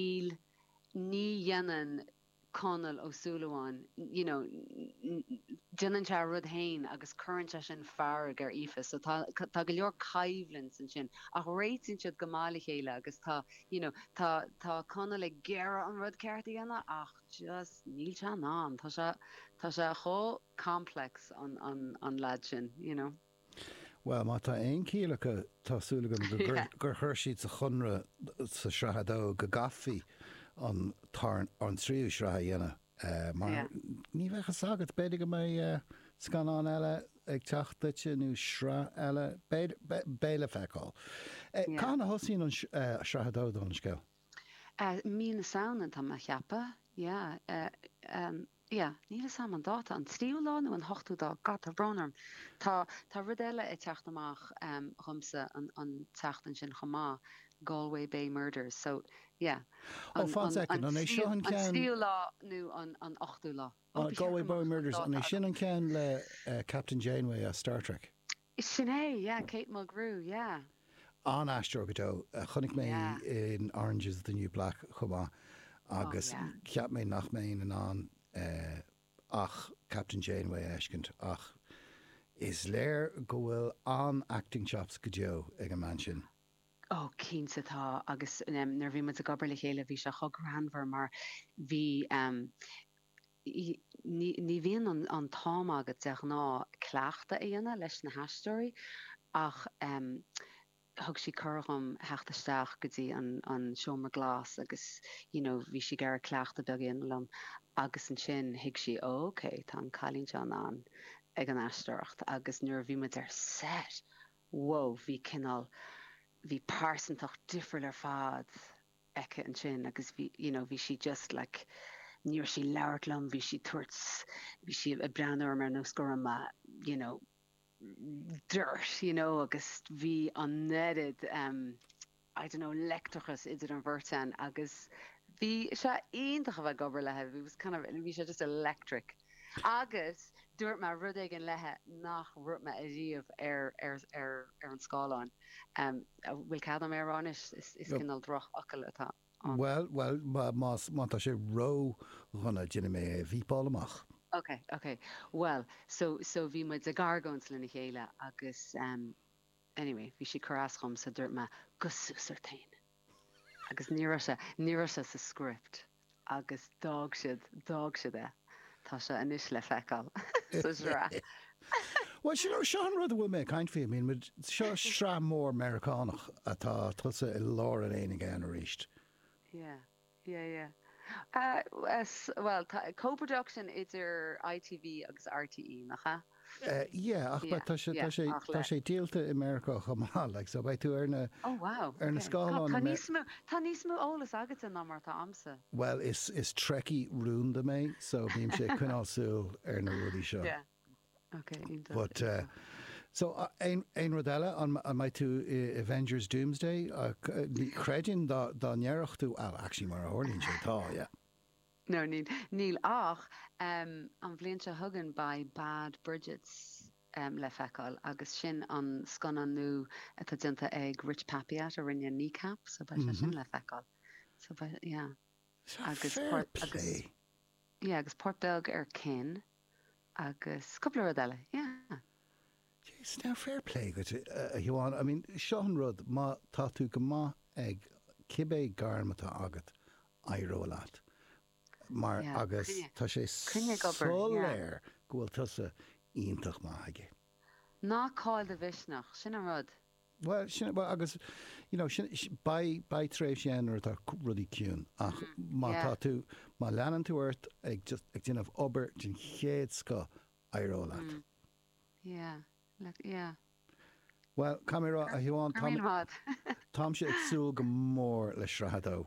níl, ní dhéanann Conall Ó Súilleabháin, you know, déanann sé a rud féin agus cuireann sé sin fearg ar Aoife so tá, tá go leor coimhlint ansin ach réitíonn siad go maith le chéile agus tá, you know, tá, tá Conall ag iarraidh an rud ceart a dhéanamh ach just níl sé in ann, tá sé, tá sé chomh complex an, an, an lad sin, you know. Bhuel, má tá aon chiall acu, tá súil agam gur chuir siad sa chonradh sa tSraith a Dó go gcaithfí an tríú sraith a dhéanamh mar ní bheadh fhios agat, b'fhéidir go mbeidh scannán eile ag teacht duit nó sraith eile, beidh le feiceáil. Cathain a thosaíonn Sraith a Dó don scéal? Mí na Samhna, tá mé a cheapadh. Yeah, níl 'fhios a'm an dáta, an tríú lá nó an t-ochtú lá, God tá brón orm, tá, tá rud eile ag teacht amach ehm dhomsa an, an tseachtain sin chomh maith, Galway Bay Murders, so yeah, Ó an, fan an, soicind, an an é tríú, seo an an ceann, tríú lá nó an, an t-ochtú lá, ó ah, ba dheacair Galway Bay amach an Murders, an é dáta sin agam. an ceann le eh Captain Janeway as Star Trek? Sin é, yeah, Kate Mulgrew, yeah. An-aisteoir go deo. Chonaic mé í Yeah. in Orange is the New Black chomh maith Oh, agus yeah. cheap mé nach mbeinn in ann ach Captain Janeway a fheiscint ach is léir go bhfuil an-acting chops go deo ag an mbean sin. Oh, cinnte tá agus nuair a bhí muid ag obair le chéile bhí sé chomh greannmhar mar bhí. Ní bhíonn an t-am agat de ghnáth cleachtadh a dhéanamh leis na haisteoirí ach thug sí cuireadh dhom theacht isteach go dtí an seomra glas agus you know bhí sí ag iarraidh cleachtadh beag a dhéanamh liom agus ansin thuig sí ok tá an cailín seo in ann ag an aisteoireacht agus nuair a bhí muid ar set whoa bhí cineál bhí pearsantacht difriúil ar fad aici ansin agus bhí you know bhí sí just like ní raibh sí ag labhairt liom, bhí sí tabhairt bhí sí ag breathnú orm ar nós go raibh mé you know dirt you know agus bhí an oiread um I don't know leictreachas idir an bheirt againn agus bhí sé iontach a bheith ag obair léithi, it was kind of bhí sé just electric. Agus dúirt mé rud éigin léithi nach ndúirt mé ariamh ar an scáileán. Bhfuil cead agam é a rá anois? Is cineál drochfhocal atá ann. Bhuel, bhuel, má tá sé ródhona déanfaidh mé é a bhípeáil amach. Ok, ok. Bhuel, so, so bhí muid ag argóint lena chéile agus anyway bhí sí ag cur as dhom so dúirt mé go súsartain. Agus ní raibh sé, ní raibh sé sa script agus d'fhág siad, d'fhág siad é. Tá sé anois le feiceáil sa tsraith. Bhuel, sin, seo an rud a bhfuil mé ag caint faoi. I mean, muid, seo sraith mhór Meiriceánach atá tusa i lár an aonaigh ann arís. Yeah. Yeah yeah. Bhuel, tá co-production idir ITV agus RTÉ, nach ea? Yeah, ach but tá sé, tá sé, tá sé díolta i Meiriceá chomh maith, like, so beidh tú ar na, Oh wow, ar na scáileáin. Tá níos mó, tá níos mó eolas agatsa ná mar atá agamsa. Bhuel, is, is Trekkie rúnda mé, so bímse ag coinneáil súil ar na rudaí seo. Yeah. Ok, iontach, iontach. So, aon rud eile? An mbeidh tú i Avengers Doomsday? Chreidfinn dá ndéarfadh tú, well, actually mar a tharlaíonn sé, tá, yeah. No, níl, níl ach an bhliain seo chugainn beidh Bad Bridgets le feiceáil agus sin an scannán nua atá déanta ag Rich Peppiatt a rinne Kneecap, so beidh sé sin le feiceáil. So, yeah. Sea, fair play. Yeah, agus páirt beag ar Kin agus cúpla rud eile, yeah. Jeez, now fair play dhuit, a Shiobhán. I mean, seo an rud, má tá tú go maith ag cibé gairm atá agat, éireoidh leat. Mar, agus tá sé soiléir go bhfuil tusa iontach maith aige. Ná caill do mhisneach, sin an rud. Bhuel, sin, bhuel, agus, you know, sin, beidh, beidh tréimhsí ann nuair atá rudaí ciúin ach má tá tú, má leanann tú ort ag just, ag déanamh obair den chéad scoth, éireoidh leat. Yeah, look, yeah. Bhuel, caithfidh mé a rá, a Shiobhán, táimse ag súil go mór le Sraith 2.